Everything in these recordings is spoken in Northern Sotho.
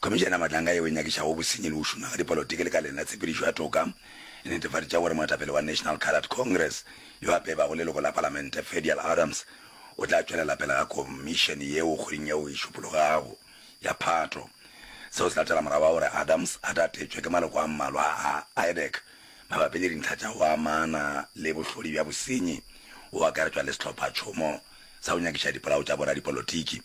Khomišene ya Matlanga yeo e Nyakišago Bosenyi le go Šoma ga Dipolotiki lekaleng la tshepedišo ya toka e netefaditše gore moetapele wa National Coloured Congress yo a bebago leloko la palamente Fedial Adams o tla tšwelela pele ga khomišene yeo kgweding yeo e šupologago ya Phato. Seo se latela morago ga gore Adams a tatetšwe ke maloko a mmalwa a IDEC mabapi le dintlha tša go amana le bohlodi bja bosenyi, go akaretšwa le sehlophatšhomo sa go nyakiša dipolao tša boradipolotiki.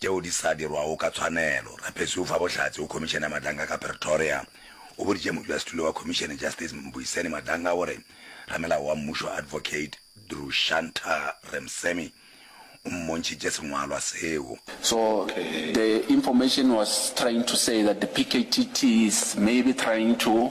tšeo di sa dirwago ka tshwanelo. Rapesi o fa bohlatse go Khomišene ya Madlanga ka Pretoria. O boditše modulasetulo wa khomišene Justice Mbuyiseni Madlanga gore ramelao wa mmušo Advocate Drushanta Remsemi o mmontšhitše sengwalwa seo. So the information was trying to say that the PKTT is maybe trying to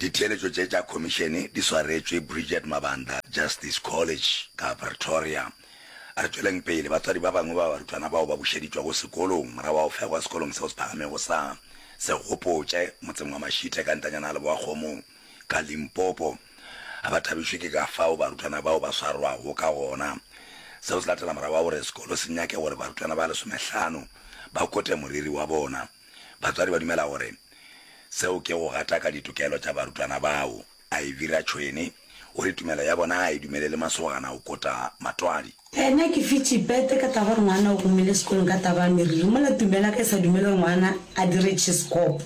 Ditheeletšo tše tša Khomišene di swaretšwe Bridget Mabanda Justice College ka Pretoria. A re tšweleng pele, batswadi ba bangwe ba barutwana bao ba bušeditšwago sekolong morago ga go fegwa sekolong seo se phagamego sa Segopotše motseng wa Mashite ka ntanyana ya leboakgomo ka Limpopo ga ba thabišwe ke ka fao barutwana bao ba swarwago ka gona. Seo se latela morago ga gore sekolo se nyake gore barutwana ba lesomehlano ba kote moriri wa bona. Batswadi ba dumela gore. Seo ke go gataka ditokelo tša barutwana bao. Ivy Ratshoene o re tumelo ya bona ga e dumelele masogana go kota matwadi. Ena ke fitše pete ka taba ya gore ngwana o gomile sekolong ka taba ya meriri mola tumelo ya ka e sa dumele gore ngwana a dire tšhisekopo.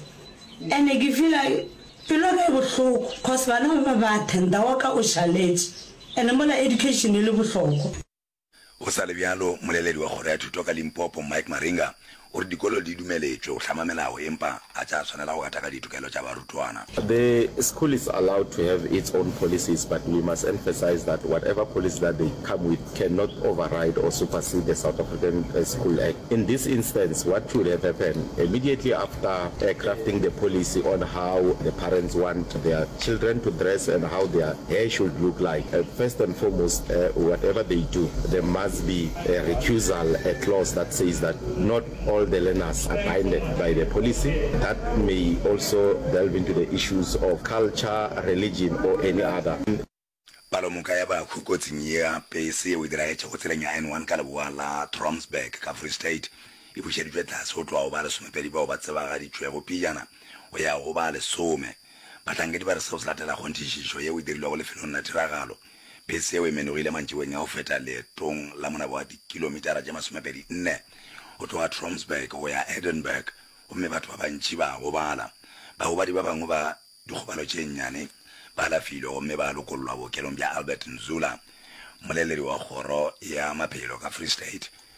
Ene ke feel-a pelo ya ka e bohloko cos bana ba bangwe ba attenda wa ka o šaletše ene mola education e le bohlokwa. Go sa le bjalo, mmoleledi wa Kgoro ya Thuto ka Limpopo, Mike Maringa, o re dikolo di dumeletšwe go hlama melao empa ga tša swanela go gataka ditokelo tša barutwana. The school is allowed to have its own policies but we must emphasize that whatever policy that they come with cannot override or supersede the South African School Act. In this instance, what should have happened, immediately after crafting the policy on how the parents want their children to dress and how their There should look like a first and foremost uh, whatever they do there must be a recusal a clause that says that not all the learners are binded by the policy that may also delve into the issues of culture religion or any other Palomoka ya bahu kotsing ea pese yeo e diragetšego tseleng ya N1 ka leboa la Tromsburg ka Free State e bušeditšwe tlase go tloga go ba lesomepedi bao ba tsebagaditšwego pejana go ya go ba lesome. Bahlankedi ba re seo se latela kgonthišišo yeo e dirilwego lefelong la tiragalo. Bese yeo e menogile mantšiboeng a go feta leetong la monaba wa dikilomitara tše masomepedi nne go tloga Tromsburg go ya Edinburgh gomme batho ba bantši ba gobala. Bagobadi ba bangwe ba dikgobalo tše nnyane ba alafilwe gomme ba lokollwa bookelong bja Albert Nzula, mmoleledi wa kgoro ya maphelo ka Free State,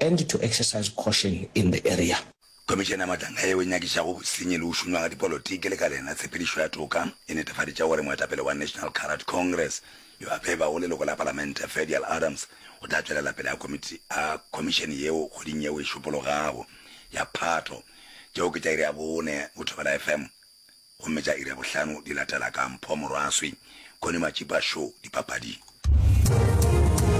and to exercise caution in the area. Khomišene ya Matlanga yeo e nyakišago Bosenyi le go Šunywa ga Dipolotiki le ka le yena Tshepedišo ya Toka e netefaditše gore moetapele wa National Carrot Congress yo a febago leloko la Palamente Fedial Adams o tla tšwelela pele a komiti a khomišene yeo kgweding yeo e šupologago ya Phatho. Tšeo ke tša iri ya bone go Thobela FM gomme tša iri ya bohlano di latela ka Mpho Morwaswi, Connie Matšipa Show dipapading.